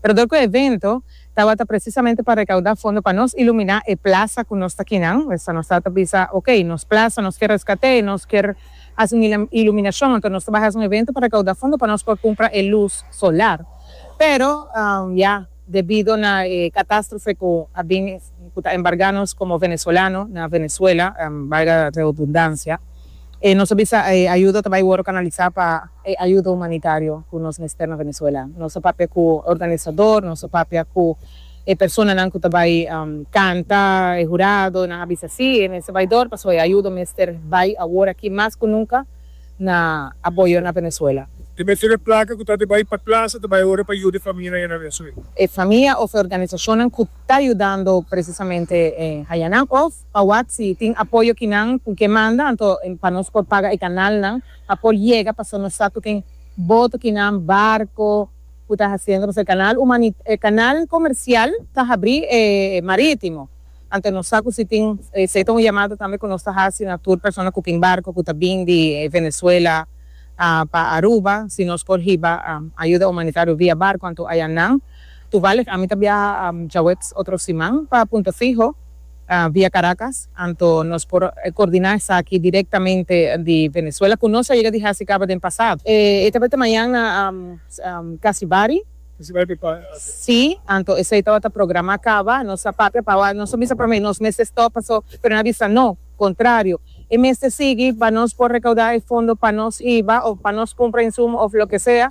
Pero dor ku e evento tabata presisamente pa rekaudá fondo pa nos iluminá e plasa ku nos ta kinan, mester nos sa ta bisa, ok, nos plasa nos kier reskat'é, nos kier hasi un iluminashon, anto nos ta bai hasi un evento pa rekaudá fondo pa nos por kumpra e lus solar. Pero, ya, debido na e katastrofe ku a bini, ku ta embargá nos komo venezolano na Venezuela, valga redundansia, E nos a bisa e ayuda ta bai wòrdu kanalisá pa e ayuda humanitario ku nos mester na Venezuela. Nos a papia ku organisador, nos a papia ku e personanan ku ta bai kanta, e hurado, e nan a bisa sí, e mester bai dor pasobra e ayuda mester bai awor aki mas ku nunka na apoyo na Venezuela. E mester e plaka ku ta di bai pa plasa ta bai ora pa yuda e famianan ya na Venezuela. E famia òf e organisashonnan ku ta yudando presisamente hañanan òf Pa wak si tin apoyo kinan cu ke manda anto pa nos por paga e canalnan pa por yega paso nos sa cu tin boto kinan barco cu ta haciendo paso e canal humani e canal comercial ta habri e maritimo anto nos sa cu si tin esey ta un yamada tambe cu nos ta haci na tur persona cu tin barco cu ta bin di Venezuela pa Aruba si nos por hiba ayuda humanitario via barco anto ayanan toevallig ami ta biaha djaweps otro siman pa Punta Fijo. via Caracas, anto nos por coordina esaki directamente di Venezuela, cu nos a yega di haci caba den pasado. E tabata mañana Casibari. Casibari di Paz. Sí, anto esey tabata programa caba, nos a papia pa awor, nos a bisa prome, nos mester stop paso, pero nan a bisa no, contrario, e mester sigui pa nos por recauda e fondo pa nos iba of pa nos cumpra insumo of loke sea.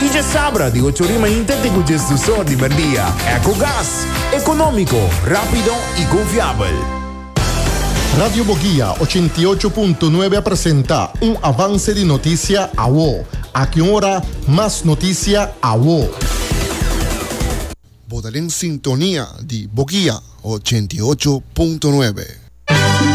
Y dje sabra di ocho rima inter te cu djes dusor di merdia. Ecogas, economico, rapido y confiabel. Radio Boguia ochenta i ocho punto nuebe a presenta un avance di noticia awo. Aki un ora mas noticia awo. Bo ta den sintonia di Boguia ochenta i ocho punto nuebe.